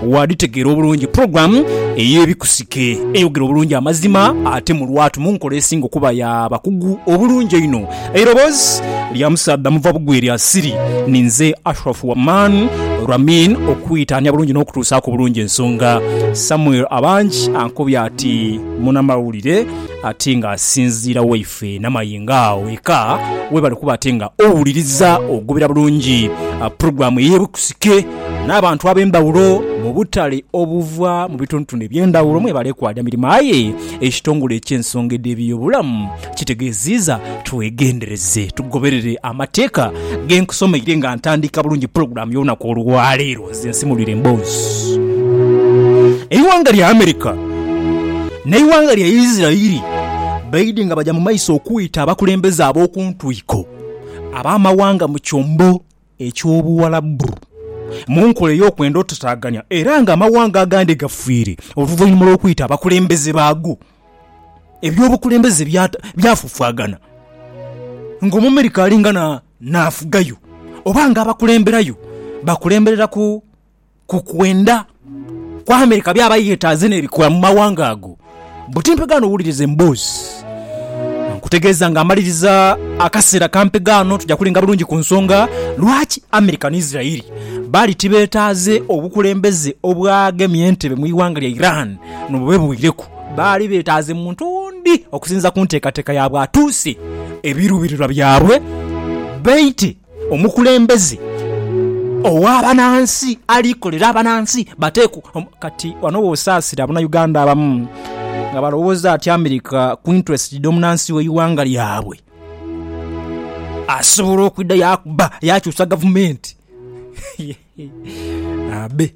waadhitegeera obulungi pulogulaamu ey'ebikusike eyogera obulungi amazima ate mu lwatu mu nkola esinga okuba ya bakugu obulungi einho. Eiroboozi lya musaadha muva bugwi lya Siri ni nze Ashraf Waman Ramin okwitaania bulungi n'okutuusaaku obulungi ensonga. Samuel Abangi ankobye ati munamawulire ate nga asinziira wa Ffe namayi nga awo eka webale kuba ate nga owuliriza ogobera bulungi pulogulamu eyebukusike nabantu abembawulo mubutale obuva mubitundutundu ebyendawulo mwebale kwaja mirimo aye ekitongole ekyensonga edhebiyobulamu kitegeziiza twegendereze tugoberere amateeka genkusomeire nga ntandika bulungi pulogulamu yolunaku olwaleero. Nze nsimulwire emboozi eighanga lya America n'eighanga lya Isirairi baidhi nga baja mu maiso okwita abakulembeze ab'oku ntwiko ab'amawanga mu kyombo eky'Obuwarabu mu nkola ey'okwenda otutaaganya era nga amawanga agandi gafiire oluvainhuma lw'okwita abakulembeze baago eby'obukulembeze byafufwagana nga Omumerika alinga na n'afugayo, oba nga abakulemberayo bakulemberera ku ku kwenda kwa Amerika byaba yetaaze n'ebikola mu mawanga ago. Buti mpegaano wuliriza emboozi nkutegeeza nga amaliriza akaseera ka mpegaano tuja kulinga bulungi ku nsonga lwaki Amerika ni Israel bali tibetaaze obukulembeze obwagemya entebe mu iwanga lya Iran nobube bwireku. Baali beetaaze muntu ondi okusinziira ku nteekateeka ya bwatuusi ebiruubirirwa byabwe. Baite omukulembeze ow'abanansi ali kolera abanansi bateekwa kati wano w'osaasira Abanayuganda abamu nga balowooza ati America ku interest dh'omunansi w'eighanga lyabwe asobola okwidha yakuba yakyusa gavumenti. Abe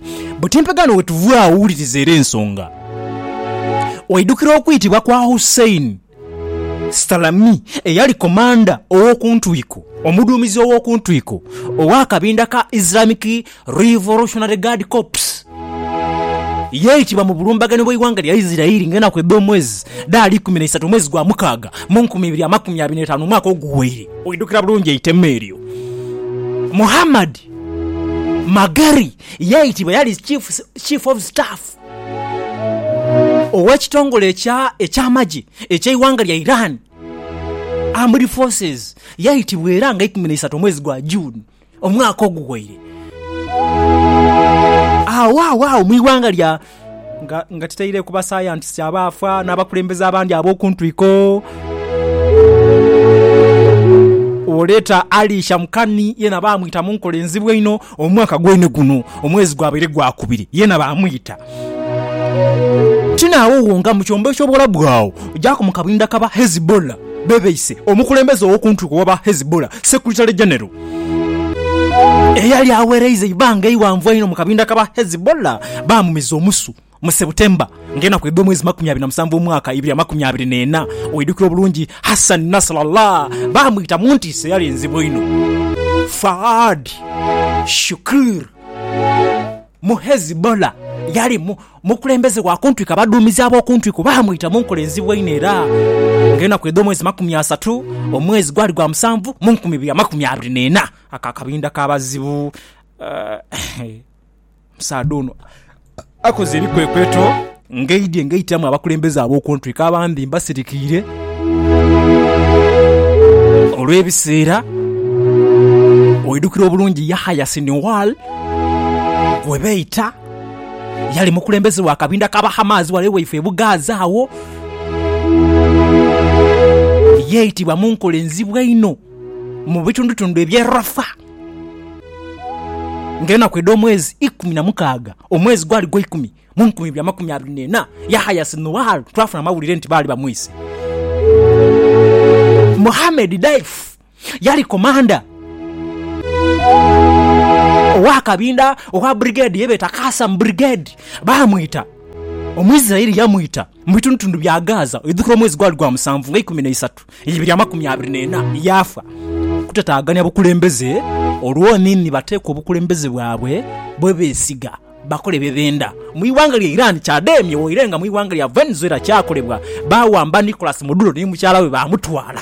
Buti empegaano wetuva agho wuliriza era ensonga. Waidukira okwitibwa kwa Hussein Stalami eyali komanda ow'okuntwiko, omuduumizi ow'okuntwiko ow'akabinda ka Islamic Revolutionary Guard Corps. Yaitibwa mu bulumbaganhi bw'eighanga lya Isirairi nga enaku edh'omwezi dhaali ikumi na isatu omwezi gwa mukaaga mu nkumi ibiri amakumi abiri n'etaanu omwaka oguwaire. Waidukira bulungi eitema eryo. Muhammad Magari yaitibwa yali chief chief of staff ow'ekitongole ekya eky'amagye eky'eighanga lya Iran, Armed Forces, yaitibwa era nga ikumi na isaatu omwezi gwa June omwaka oguwaire. Agho agho agho mu ighanga lya. nga, nga tutaireku basayantisiti abaafa n'abakulembeze abandi ab'oku ntwiko. Oleeta Alisha Mukani, yena baamwita mu nkola enzibu einho, omwaka gwene guno, omwezi gwabaire gwakubiri, yena baamwita. Ti naagho wonka, mu kyombo eky'Obuwalabu agho, gyaku mu kabinda k'aba Hezbollah, bebeise omukulembeze ow'oku ntwiko w'aba Hezbollah, Secretary General. Eyali aghereiza eibanga eighanvu einho mu kabinda k'aba Hezibullah baamumiza omusu mu September ng'enaku edh'omwezi makumi abiri na musanvu omwaka ibiri amakumi abiri n'ena. Oidhukira obulungi Hassan Nasrallah baamwita mu ntiisa eyali enzibu einho. Faad Shukr mu Hezbollah yali Omukulembeze wa ku ntwiko abaduumizi ab'oku ntwiko baamwita mu nkola enzibu einho era ng'enaku edh'omwezi makumi asatu, omwezi gwali gwa musanvu mu nkumi ibiri amakumi abiri n'ena ak'akabinda k'abazibu. Omusaadha ono akoze ebikwekweto ng'eidhi eng'aitiramu abakulembeze ab'oku ntwiko abandi mbasirikiire olw'ebiseera. Oidhukira obulungi Yahaya Sinwar gwe beeta? Yali mukulembeze wa kabinda ka Bahamaazi ghale waife e Bugaaza agho. Yeitibwa mu nkola enzibu einho mu bitundutundu eby'e Rafa. Ng'enaku edh'omwezi ikumi na mukaaga, omwezi gwali gwa ikumi, mu nkumi ibiri amakumi abiri n'ena, Yahaya Sinuwaaru twafuna amawulire nti baali bamwise. Mohammed Daif. yali komanda ow'akabinda owa burigedi ye beeta Kasamu Burigedi. Baamwita Omuisiraeli yamwita mu bitundutundu bya Gaza oidhukira omwezi gwali gwa musanvu nga ikumi n'eisatu ibiri amakumi abiri n'ena, yaafa. Kutataagania bukulembeze olwo ni ni bateekwa obukulembeze bwabwe bwe beesiga bakole bye benda. Mu ighanga lya Iran kyademye waire nga mu ighanga lya Venezuela kyakolebwa, baawamba Nicolas Maduro ni mukyala we baamutwala.